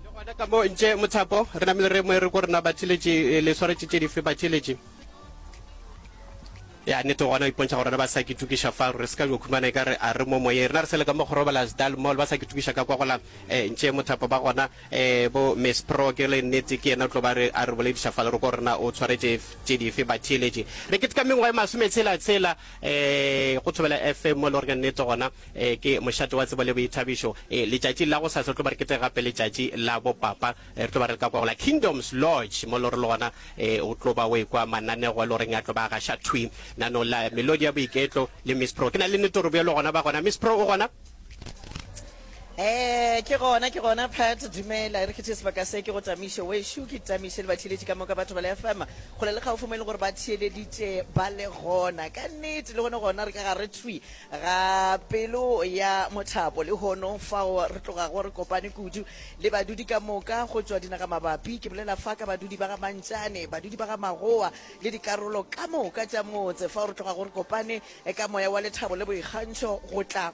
le gona ka mo ntše mothapo re namele re moe re ko rena batšheletše eh, le swaretše tše dife batšheletše ya nete gona o ipontšha gore rena ba sa ke tukiša fa re se ka jo khumana e ka re a re mo moyeng rena re sele ka mo gorobala sdal mall ba sa ke tukiša ka kwa gola um ntše mothapo ba gona um bo miss pro ke le nnete ke yena o tlo ba re a re bolediša fa le re ko rena o tshwaretše tše dife batšheletše re ketekamengwa e masometshela tshela um go thobela fm mo e le gore ka nnete gona Ee, ke mošate wa tsebo le boithabišo. Ee, letšatši la go sasa re tlo ba re keteka gape letšatši la bopapa. Ee, re tlo ba re le ka kwa go la Kingdoms Lodge, mo le gore le gona ee, o tlo ba o ekwa mananego e le goreng a tlo ba a gaša thwi. Nano la melodi ya boiketlo le Miss Pro. Ke na le nnete gore bjalo gona ba gona. Miss Pro, o gona? Ee, ke gona, ke gona Pat. Dumela, e re ke tšee sebaka se ke go Tamiše wešo. Ke Tamiše le batheeletši ka moka, batho ba le FM kgole le kgaufo mo e leng gore ba theeleditše ba le gona. Ka nnete, le gone gona re ka gare thwi. Ga pelo ya mothapo, lehono fao re tlogago re kopane kudu le badudi ka moka go tšwa dinagamabapi, ke bolela fa ka badudi ba ga Mantšane, badudi ba ga Magowa le dikarolo ka moka tša motse, fao re tlogago re kopane ka moya wa lethabo le boikgantšho go tla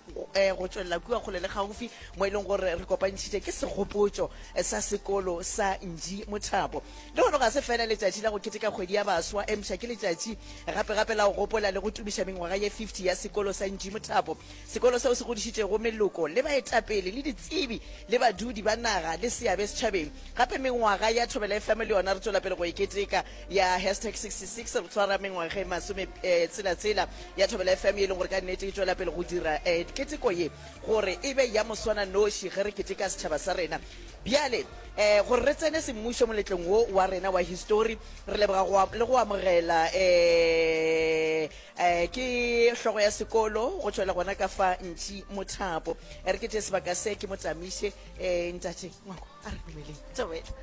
go tšwelela kua kgole le kgaufsi mo e leng gore re kopantšhitše ke segopotšo sa sekolo sa Nji Mothapo. Lehono ga se feela letšatši la go keteka kgwedi ya baswa, empša ke letšatši Gape gape la go gopola le go tumiša mengwaga ye 50 ya Sekolo sa Nji Mothapo, sekolo seo se godišitšego meloko le baetapele le ditsebi le badudi ba naga le seabe setšhabeng. Gape mengwaga ya Thobela FM le yona re tšwela pele go e keteka. Ya hashtag 66 re tshwara mengwaga e masome tshela tshela ya Thobela FM, ye e leng gore ka nnete e tšwela pele go dira keteko ye gore e be ya moswananoši ge re keteka setšhaba sa rena. Bjale, ee, gore re tsene semmušo moletlong wo wa rena wa histori, re leboga go le go amogela. Ee, ee, ke hlogo ya sekolo go tšwela gona ka fa Ntši Mothapo. E re ke tše sebaka se, ke mo tsamiše. Ee, Ntate Ngwako, a re dumeleng. Thobela.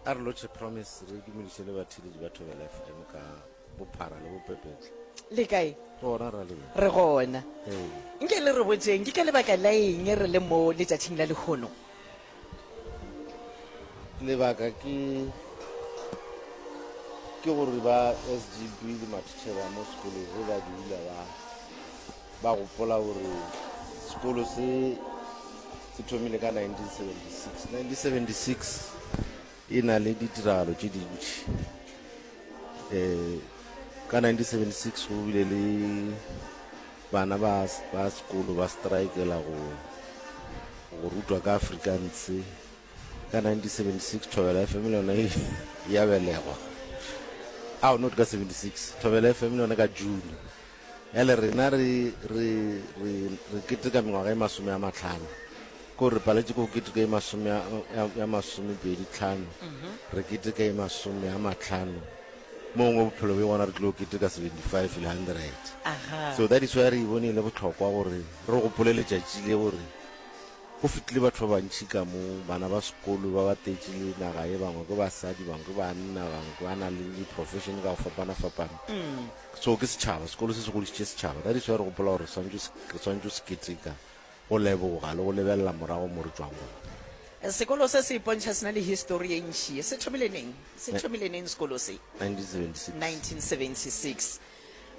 A re lotšhe, Promise, re dumediše le batheeletši ba Thobela FM ka. Bophara le bopepetla. Le kae? Gona ra le. Re gona. Nke le re botseng ke ka lebaka la eng re le mo letšatšing la lehono? Lebaka ke ke gore ba SGB le matitšhere mo sekolong ge ba dula ba ba gopola gore sekolo se se thomile ka 1976 1976 E na le ditiragalo tše dintši. Um ka 1976 go bile le bana ba ba sekolo ba strikela go go rutwa ka Afrikaans. Ka 1976 Thobela FM le yone ya belegwa. Ao not ka 76. Thobela FM le yone ka June. Bjale rena re, re, re, re keteka mengwaga e masome a matlhano. Ko re paletše ko keteka e masome a, ya, ya masome pedi tlhano. Re keteka e masome a matlhano. Mongwe bophelo bjo gona re tlilo keteka 75 le 100. Aha. So that is why re e bone e le bohlokwa gore re gopole letšatši le gore go fitlile batho ba bantši ka mo, bana ba sekolo ba batetše le naga ye, bangwe ke basadi, bangwe ke banna, bangwe ba na le di-profession ka go fapana-fapana. so ke setšhaba sekolo se se godišitše setšhaba ka diso ya re gopola gore re swantšo se keteka go leboga le go lebelela morago mo re tšwang gona sekolo se se ipontšha sena le histori ye ntši se thomile neng se thomile neng sekolo se 1976 1976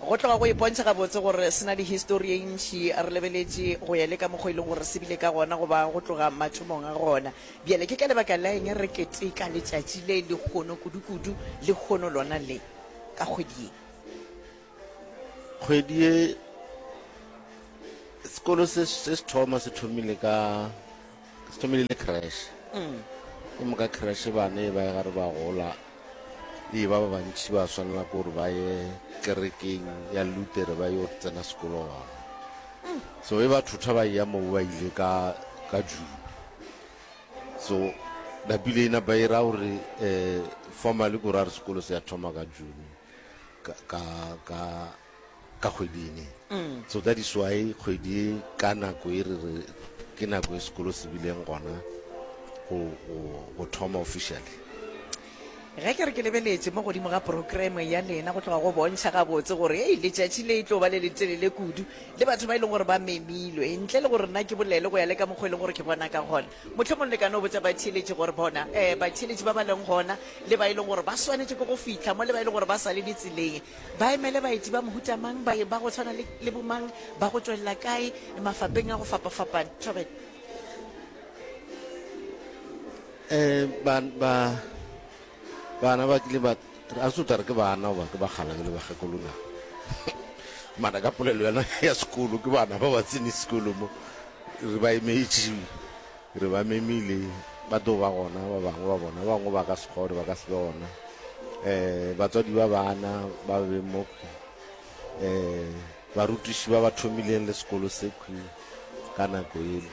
go tloga go ipontšha gabotse gore sena le histori ye ntši re lebeletše go ya le ka mokgwa e leng gore se bile ka gona goba go tloga mathomong a gona bjale ke ka lebaka la eng re keteka letšatši le le kgono kudu kudu le kgono lona le ka kgwedi ye kgwedi ye sekolo se se thoma se thomile ka se thomile le crash mm. ke moka crash bane ba e gare ba gola ee ba ba bantši ba swanela ke gore ba ye kerekeng ya lutere ba yo tsena sekolo gona mm. so e ba thotha ba ya moo ba ile ka ka june so napile ina ba ira gore um formally ko ra re sekolo se ya thoma ka june ka ka ka ka kgwedi ene mm. so that is why kgwedi e ka nako e re re ke nako e sekolo se bileng gona go thoma officially Ge ke re ke lebeletše mo godimo ga programe ya lena, go tloga go bontšha gabotse gore hei, letšatši le e tlo ba le letelele kudu, le batho ba e lego gore ba memilwe. Ntle le gore nna ke bolele go ya le ka mokgwa e lego gore ke bona ka gona, mohlomong le ka no botša batheeletši gore bona, ee, batheeletši ba ba leng gona, le ba e lego gore ba swanetše ke go fihla mo, le ba e lego gore ba sa le ditseleng, ba emele baeti ba mohuta mang, baeng ba go tshwana le, le bomang, ba go tšwelela kae, mafapeng a go fapafapana. Thobela. eh ba ba bana ba kile ba a se tare ke bana ba ke ba gala ke le ba gakolona mana ka polelo yana ya sekolo ke bana ba ba tsene sekolo mo re ba emetše re ba memile ba tlo ba gona ba bangwe ba bona ba bangwe ba ka sekgore ba ka se be gona um batswadi ba bana ba be mo um barutiši ba ba thomileng le sekolo se Ka nako yeno,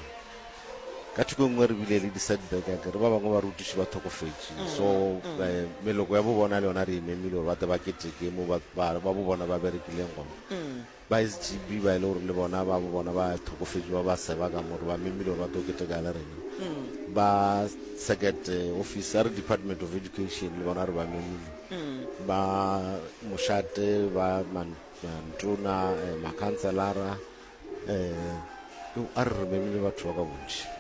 ka thoko e nngwe re bile le di-setback a kere ba bangwe ba rutiši ba thokofetše so eh, meloko ya bobona le yona re e memile gore ba te ba keteke mo ba ba- ba bobona ba berekileng gona ba sgb ba e le gore le bona ba bobona ba thokofetše ba ba seba ka more ba memile gore ba tlo keteka le rena ba circuit eh, office a re department of education le bona re ba memile ba mošate ba man- mantona eh, makhanselara um a re re be le batho ba ka bontši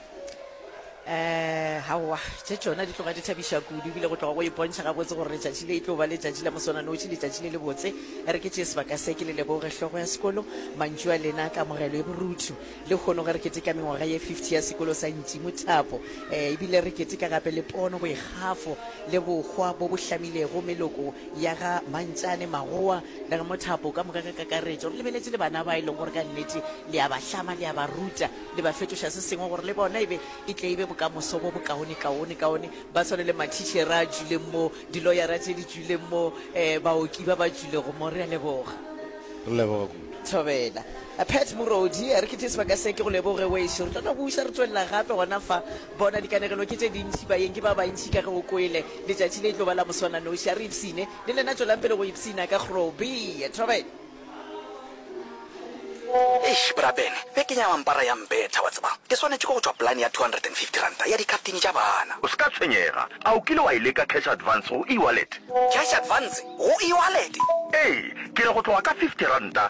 um gaowa tše tšona di tloga di thabiša kudu ebile go tloga go ipontšha gabotse gore letšatši le e tlo ba letšatši la moswananoši letšatši le le botse e re ke tšee sebaka se ke le leboge hlogo ya sekolo mantšu a lena kamogelo e borutho le kgono ge re keteka mengwaga ye 50 ya sekolo sa ntimo thapo um ebile re keteka gape le pono boikgafo le bokgwa bo bo hlamilego meloko ya ga mantšane magowa Le re mothapo ka moka ka kakaretšo re lebeletše le bana ba e leng gore ka nnete le a ba hlama, le a ba ruta, le ba fetoša se sengwe gore le bona e be e tle e be bokamoso bo bokaonekaonekaone. Ba tshwane le mathitšhere a tšwileng mo, diloyara tše di tšwileng mo, um baoki ba ba tšwilego mo. Re a leboga. Re leboga kudu. Thobela. Pat Morodi, a re ke tee sebaka se. Ke go leboge wešo. Re tla no buša re tšwelela gape gona fa. Bona, dikanegelo ke tše dintši, baeng ke ba bantši ka ge o kwele. Letšatši le e tlo ba la moswananoši. A re ipshine. Le lena tšwelang pele go ipshina ka Groobie. Thobela. Eish bra Ben, bekeng ya mampara ya mbetha, wa tseba. Ke swanetše ke go tšwa polane ya two hundred and fifty ranta ya dikhaftine tša bana. O se ka tshwenyega. A o kile wa e leka cash advance go e-wallet? Cash advance go e-wallet? Ee, ke re go tloga ka fifty ranta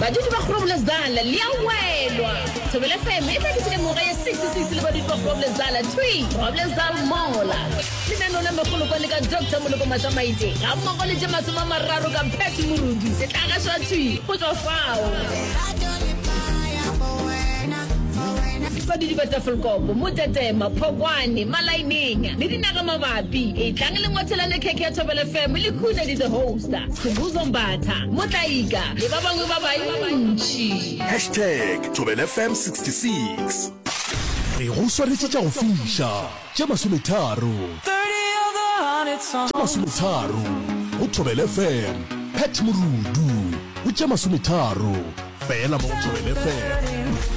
Badudi ba Groblersdal le a welwa. Thobela FM e tlaketšile moga ya 66 le badudi ba Groblersdal, thwi, Groblersdal mola. Lenaneo la megolo kwa le ka Doctor Moloko Matlamaite ga mmogo le tše masome a mararo ka Pat Morudu se tla gašwa thwi go tšwa fao. Badudi ba Tafelkop, Motetema, Phokwane, Malaeneng le dinaga mabapi. Etlang le ngwathelane khekhe ya Thobela FM le khune di the hosta. Sebuzo Mbatha. Motlaika le ba bangwe ba bantši. Hashtag ThobelFM 66. Re go swaretše tša go fiša tše masometharo tše masometharo go ThobelFM. Pat Morudu o tše masometharo fela mo go ThobelFM.